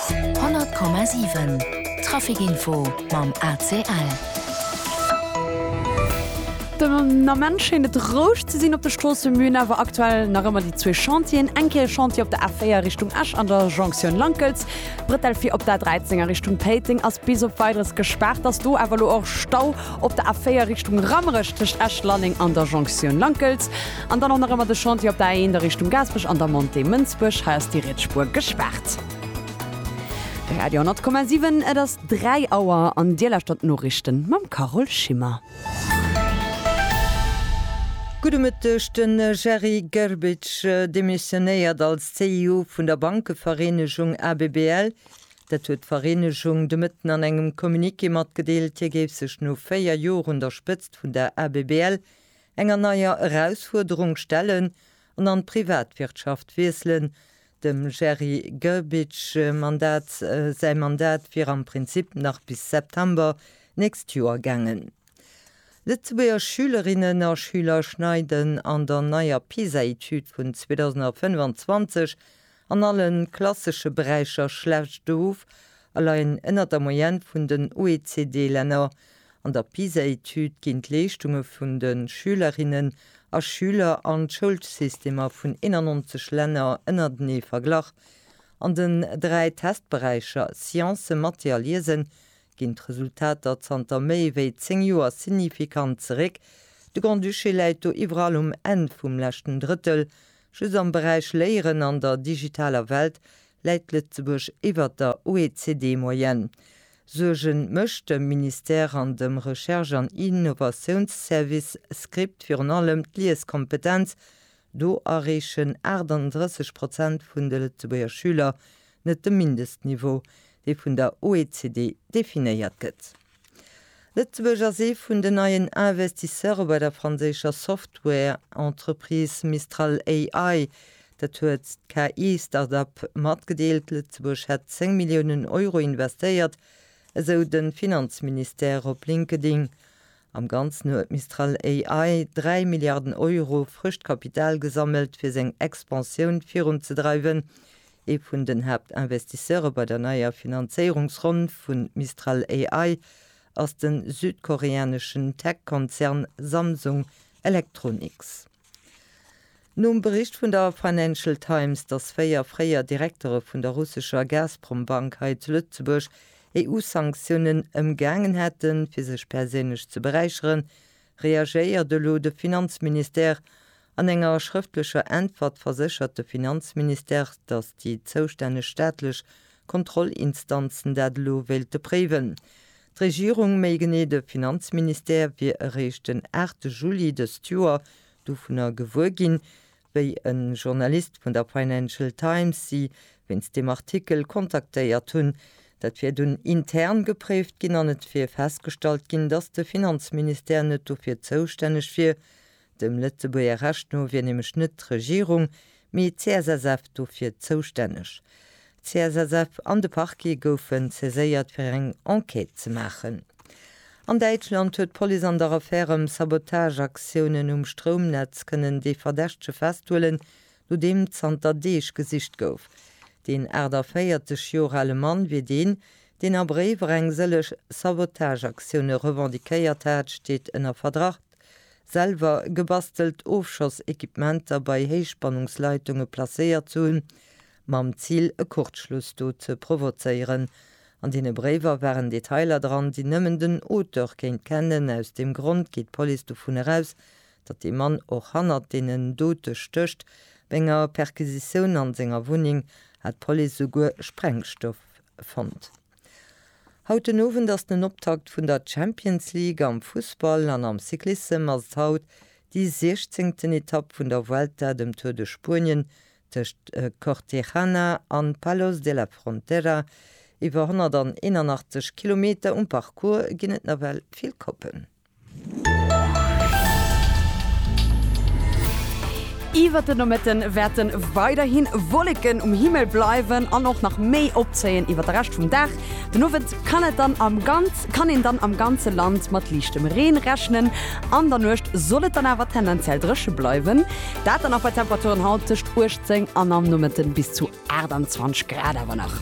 100,7 Traficinfo mam ACL. Den Ament schéint et roueg ze sinn op de Stroosse, mün awer aktuell nach ëmmer déi zwee Chantieren. Eng Kéier e Chantier op der A4 Richtung Esch an der Jonktioun Lankels. D'Bretelle fir op d'A13 a Richtung Péiteng ass bis op Weideres gespaart. Ass do awer elo och Stau op der A4 Richtung Rammerech tëscht Esch-Lalleng an der Jonktioun Lankels. An dann och nach ëmmer de Chantier op der A1 a Richtung Gaasperech an der Montée Mënsbuerg. Hei ass déi riets Spuer gespaart. Radio 10,7, et ass 3 Auer an Dir lauschtert d'Noriichten mam Carole Schimmer. Gudde Mëtteg, De Jerry Gerbic demissionéiert als CEO vun der Bankevereenegung ABBL. Dat huet d'Vereenegung de Mëtten an engem Communiqué matgedeelt. Hie géif sech no 4 Joer un der Spëtzt vun der ABBL Enger neier Erausfuerderung stellen an an d'Privatwirtschaft wiesselen. Dem Jerry Grbic Mandat, säi Mandat wier am Prinzip nach bis September d'nächst Joer gaangen. Lëtzebuerger Schülerinnen a Schüler schneiden an der neier PISA-Etüd vun 2025 An alle klassesche Beräicher schlecht of a leien ënnert der Moyenne vun den OECD-Länner. An der PISA-Etüd ginn d'Leeschtunge vun de Schülerinnen a Schüler an d'Schoulsystemer vun 91 Länner ënnertenee verglach. An den dräi Testberäicher Sciencen, Mathé a Liesen ginn d'Resultater zanter méi wéi zéng Joer signifikant zeréck. De Grand-Duché läit do iwwerall um Enn vum leschten Drëttel, Just am Beräich Léieren an der digitaler Welt läit Lëtzebuerg iwwert der OECD-Moyenne. Suerge mécht dem Ministère an dem Recherche an Innovatiounsservice Script virun allem d'Lieskompetenz, Do erreechen 38 Prozent vun de Lëtzebuerger Schüler net de Mindestniveau, dee vun der OECD definéiert gëtt. Lëtzebuerg ass ee vun den neien Investisseure bei der franséischer Software-Entreprise Mistral AI. Dat huet d'KI-Start-up matgedeelt. Lëtzebuerg hätt 10 Milliounen Euro investéiert, esou de Finanzministère op LinkedIn. Am Ganzen huet Mistral AI 3 Milliarden Euro frëscht Kapital gesammelt, fir seng Expansioun virunzedreiwen. Ee vun den Haaptinvestisseure bei der neier Finanzéierungsronn vu Mistral AI ass de südkoreaneschen Tech-Konzern Samsung Electronics. Nom Bericht vun der Financial Times, datt véier fréier Direktere vun der russescher Gazprom-Bank hei zu Lëtzebuerg EU-Sanktiounen ëmgaangen hätten, fir sech perséinlech ze beräicheren, Reagéiert elo de Finanzministère? An enger schrëftlecher Äntwert verséchert de Finanzministère, datt déi zoustänneg staatlech Kontrollinstanzen dat elo wéilte préiwen. D'Regierung, méi genee de Finanzministère, wier eréischt den 8 Juli dëst Joer dovunner gewuer ginn, wéi e Journalist vun der Financial Times si wéinst deem Artikel kontaktéiert hunn. Dat wier dunn intern gepréift ginn an et wier festgestallt ginn, datt de Finanzministère net dofir zoustänneg wier. Dem Lëtzebuerger Recht no wier nämlech net d'Regierung, mee d'CSSF dofir zoustänneg. D'CSSF an de Parquet goufen saiséiert fir eng Enquête ze maachen. An Däitschland huet d'Police an der Affär ëm Sabotageaktiounen um Stroumnetz kënnen dee Verdächtege festhuelen, no deem zanter Deeg gesicht gouf. Deen 48 Joer ale Mann wier deen, deen a Bréiwer eng sëllech Sabotageaktioune revendiquéiert hat, steet ënner Verdacht, selwer gebastelt Ofschossequipementer bei Héichspannungsleitunge placéiert ze hunn mam Zil e Kurzschluss do ze provozéieren. An deene Bréiwer waren Detailer dran, déi nëmmen den Auteur kéint kennen. Aus deem Grond geet d'Police dovun eraus, datt dee Mann och hannert deenen Dote stécht. Bei enger Perquisitioun an senger Wunneng hat d'Police esouguer Sprengstoff fonnt. Haut den Owend ass den Optakt vun der Champions League am Fussball an am Cyclissem ass et haut déi 16. Etapp vun der Vuelta, dem Tour de Spuenien, tëscht Cortegana an Palos de la Frontera, iwwer 181 Kilometer, um Parcours ginn et nawell vill Koppen. Iwwert de Nomëtte wäerte weiderhi Wolleken um Himmel bleiwen an och nach méi opzéien iwwert de Rescht vum Dag. Den Owend kann et dann am ganz kann een dann am ganze Land mat liichtem Reen rechnen. An der Nuecht soll et dann awer tendenziell dréche bleiwen. Dat dann nach bei Temperaturen haut tëscht 18 an am Nomëtten bis zu 28 Grad awer nach.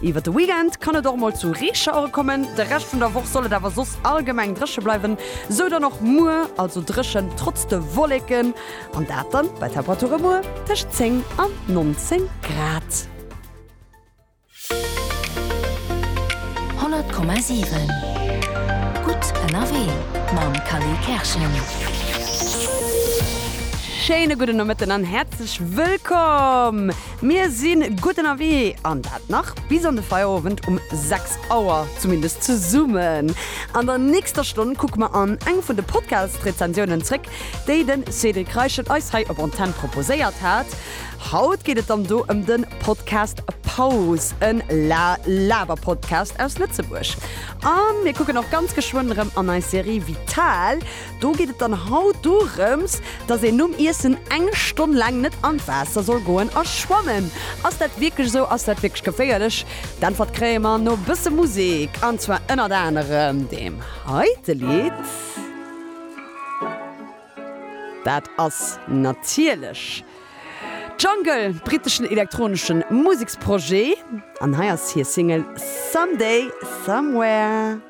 Iwwert de Weekend kann et och mol zu Reeschauere kommen. De Rescht vun der Woch soll et awer soss allgemeng dréche bleiwen, sou dann och muer, also dréchen trotz de Wolleken an dat dann bei Temperature muer tëscht 10 an 19 Grad. 100,7 Gutt ënnerwee mam Kally Kerschen. Schéine gudden Nomëtten an häerzlech wëllkomm! Mir si gutt ënnerwee an dat nach bis an de Feierowend um 6 Auer, zumindest zesummen. An der nächster Stonn kucke mer an eng vun de Podcast-Rezensiounen zréck, déi de Cédric Reichel eis hei op Antenn proposéiert hat. Haut geet et dann do ëm den Podcast Pause, en La Laber Podcast aus Lëtzebuerg. An mir kucken och ganz geschwënn erëm an eis Serie Vital. Do geet et dann haut dorëms, dass een nom Iessen eng Stonn laang net an d'Waasser soll goen a schwammen. Ass dat wierklech esou? Ass dat wierklech geféierlech? D'Äntwert kréie mer no e bësse Musek, an zwar ënnert anerem deem heite Lidd. Dat ass natierlech Jungle, britteschen elektronesche Museksprojet, an hei ass hir Single Someday Somewhere.